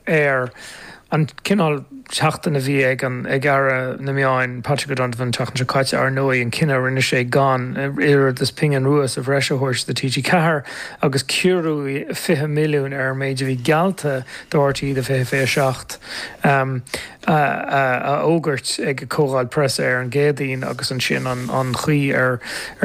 air. An cineál seachtain a bhí ag an, ag Aire na Meán, Patrick O'Donovan, an tseachtain seo caite, ar ndóigh, an cinneadh a rinne sé gan oiread is pingin rua sa bhreis a thabhairt do TG4 agus ciorrú 20 milliún ar an méid a bhí geallta do RTÉ do 2027 a fhógairt ag an gcomhdháil preasa ar an gCéadaoin agus ansin an chaoi ar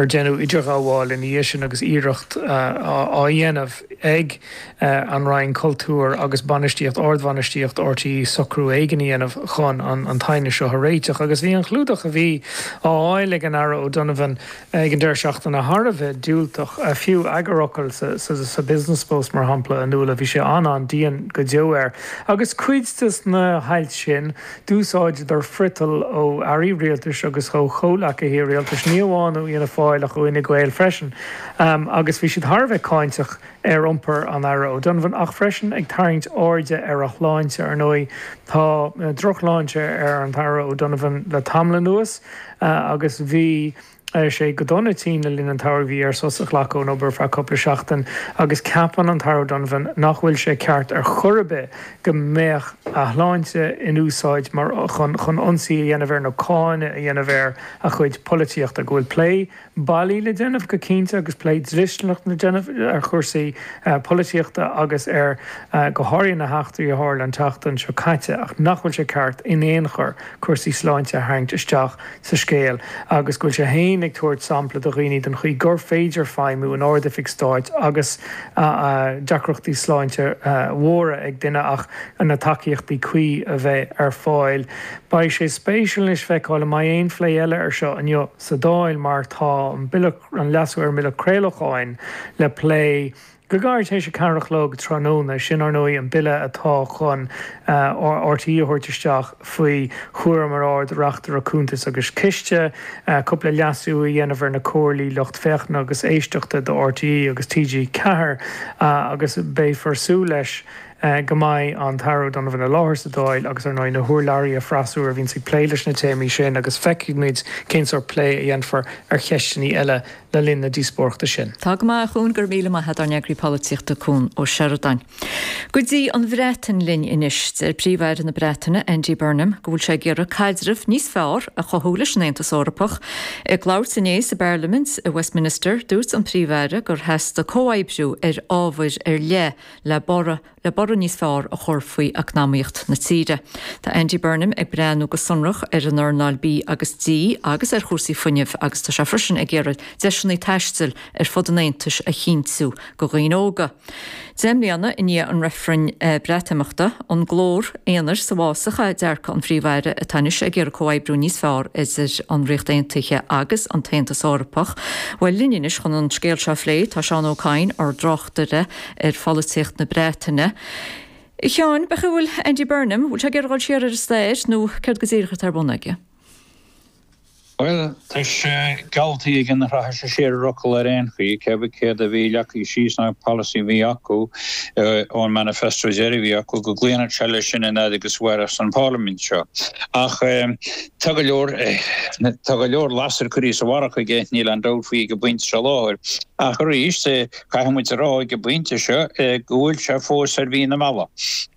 deineadh idirghabháil ina dhiaidh sin agus iarracht á dhéanamh ag an Roinn Cultúir agus bainistíocht ardbhainistíocht RTÉ socrú éigin a dhéanamh chun an t-aighneas seo a réiteach agus bhí an clúdach a bhí á fháil ag an Aire O'Donovan ag an deireadh seachtaine thar a bheith diúltach, fiú eagarfhocal sa Business Post mar shampla, a Nuala, bhí sé an-an-dian go deo air agus cuid de na hailt sin, d'úsáideadar friotal ó Airí Rialtais agus ó chomhleacaithe Rialtais, ní amháin ó Fhianna Fáil ach ó Fhine Gael freisin, agus bhí siad thar a bheith cáinteach. ar iompar an Aire O'Donovan ach freisin ag tarraingt airde ar a shláinte. Ar ndóigh, tá drochshláinte ar an Aire O'Donovan le tamall anuas agus bhí sé go dona tinn le linn an tsamhraidh. Bhí air sos a ghlacadh ón obair ar feadh cúpla seachtain agus ceapann an tAire O'Donovan nach bhfuil sé ceart ar chor ar bith go mbeadh a shláinte in úsáid mar chun ionsaí a dhéanamh air nó cáineadh a dhéanamh ar a chuid polaitíochta, go bhfuil plé bailí le déanamh go cinnte agus plé dlisteanach le déanamh ar chúrsaí polaitíochta agus ar go háirithe na heachtraí a tharla an tseachtain seo caite ach nach bhfuil sé ceart in aon chor cúrsaí sláinte a tharraingt isteach sa scéal agus go bhfuil sé féin ag tabhairt sampla do dhaoine den chaoi gur féidir feidhmiú in ardoifig stáit agus deacrachtaí sláinte mhóra ag duine ach na tacaíochtaí cuí a bheith ar fáil. Beidh sé spéisiúil anois feiceáil an mbeidh aon phlé eile ar seo inniu sa Dáil mar tá an Bille, an leasú ar an mBille Craolacháin le plé go gairid tar éis a ceathair a chlog tráthnóna. Sin, ar ndóigh, an Bille atá chun RTÉ a thabhairt isteach faoi chúram an Ard-Reachtaire Cuntas agus Ciste cúpla leasú a dhéanamh ar na comhairlí lucht féachana agus éisteachta do RTÉ agus TG4 agus beifear súil leis go mbeidh an tAire O'Donovan i láthair sa Dáil agus, ar ndóigh, na hurlabhraithe freasúra a bhíonns ag plé leis na téamaí sin agus feicfidh muid cén sórt plé a dhéanfar ar cheisteannaí eile le linn na díospóireachta sin. Tá go maith, a Chuain, go raibh míle maith agat, ár n-eagraí polaitíochta Cuan Ó Seireadáin. Go dtí an Bhreatain linn anois. Deir Príomh-Aire na Breataine, Andy Burnham, go bhfuil sé ag iarraidh caidreamh níos fearr a chothú leis an Aontas Eorpach. Ag labhairt inné sa bParlaimint i Westminster, dúirt an Príomh-Aire gur theastaigh comhoibriú ar ábhair ar leith, le borradh le borradh níos fearr a chur faoi eacnamaíocht na tíre. Tá Andy Burnham ag breathnú go sonrach ar an earnáil V agus D agus ar chúrsaí fuinnimh agus tá sé freisin ag iarraidh deiseanna taistil ar fud an Aontais a chinntiú go dhaoine óga. Deich mbliana i ndiaidh an reifrinn Breatimeachta, an glór aonair sa bhfásach é dearcadh an Phríomh-Aire atá anois ag iarraidh comhoibriú níos fearr idir an Ríocht Aontaithe agus an tAontas Eorpach. Bhuel, linn anois chun an scéal seo a phlé tá Seán Ó Cadhain, ár tráchtaire ar pholaitíocht na Breataine. A Sheáin, meas tú an bhfuil Andy Burnham, bhfuil sé ag iarraidh dul siar ar an stair nó céard go díreach atá ar bun aige? Bhuel, tá sé geallta aige nach rachaidh sé siar ar a fhocal ar aon chaoi, cébí céard a bhí leagtha síos sa bpolasaí a bhí acu ón manifesto deiridh a bhí acu, go gcloífeadh sé leis sin an fhad agus a mhairfeadh an pharlaimint seo. Ach tá go leor, tá go leor lasair curtha sa bharrach aige, níl aon dabht faoi ag an bpointe seo i láthair. Ach arís, Caithfidh muid a rá ag an bpointe seo go bhfuil sé fós ar mhí na meala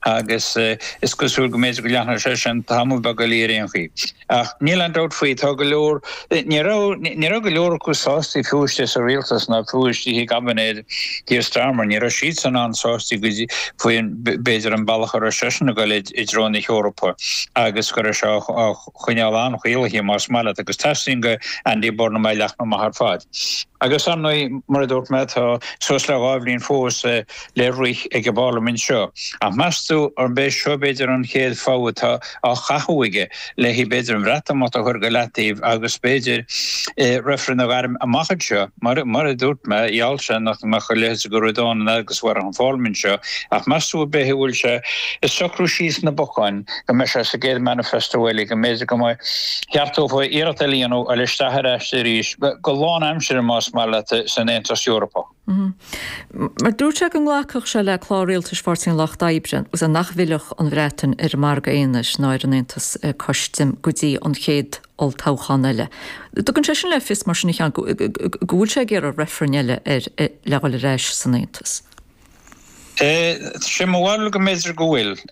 agus is cosúil go mb'fhéidir go leanfadh sé sin tamall beag eile ar aon chaoi. Ach níl aon dabht faoi, tá go leor, ní raibh, ní raibh go leor acu sásta fiú istigh sa rialtas ná fiú istigh i gcaibinéad Keir Starmer, ní raibh siadsan an-sásta go dtí, faoi b'fhéidir an bealach a raibh seisean ag dul i dtreo na hEorpa agus go raibh sé á choinneáil an-chaolaithe más maith leat agus teastaíonn ó Andy Burnham é a leathnú amach ar fad. Agus ar ndóigh, mar a dúirt mé, tá suas le dhá bhliain fós le rith ag an bParlaimint seo. Ach meas tú an mbeidh seo b'fhéidir an chéad fhód atá á chaitheamh aige le b'fhéidir an Bhreatimeacht a chur go leataobh agus b'fhéidir reifreann a ghairm amach anseo? Mar a dúirt mé, gheall sé nach mbeadh a leithéid de ghuaire dán in eagarthóireacht an Pharlaimint seo ach meas tú ab é an bhfuil sé ag socrú síos na bocáin? go mbeidh sé sa gcéad manifesto eile, go mb'fhéidir go mbeadh sórt iarracht a dhéanamh a dhul isteach ar ais arís, go lánaimseartha más maith leat, san Aontas Eorpach. Mar dúirt sé go nglacfadh sé le clár rialtais Pháirtí an Lucht Oibre agus nach bhfillfeadh an Bhreatain ar an margadh aonair ná ar an aontas custaim go dtí an chéad olltoghchán eile. Tugann sé sin le fios mar sin a Sheáin go bhfuil sé ag iarraidh reifrinn eile le dhul ar ais san aontas. Sé mo bharúil go mb'fhéidir go bhfuil.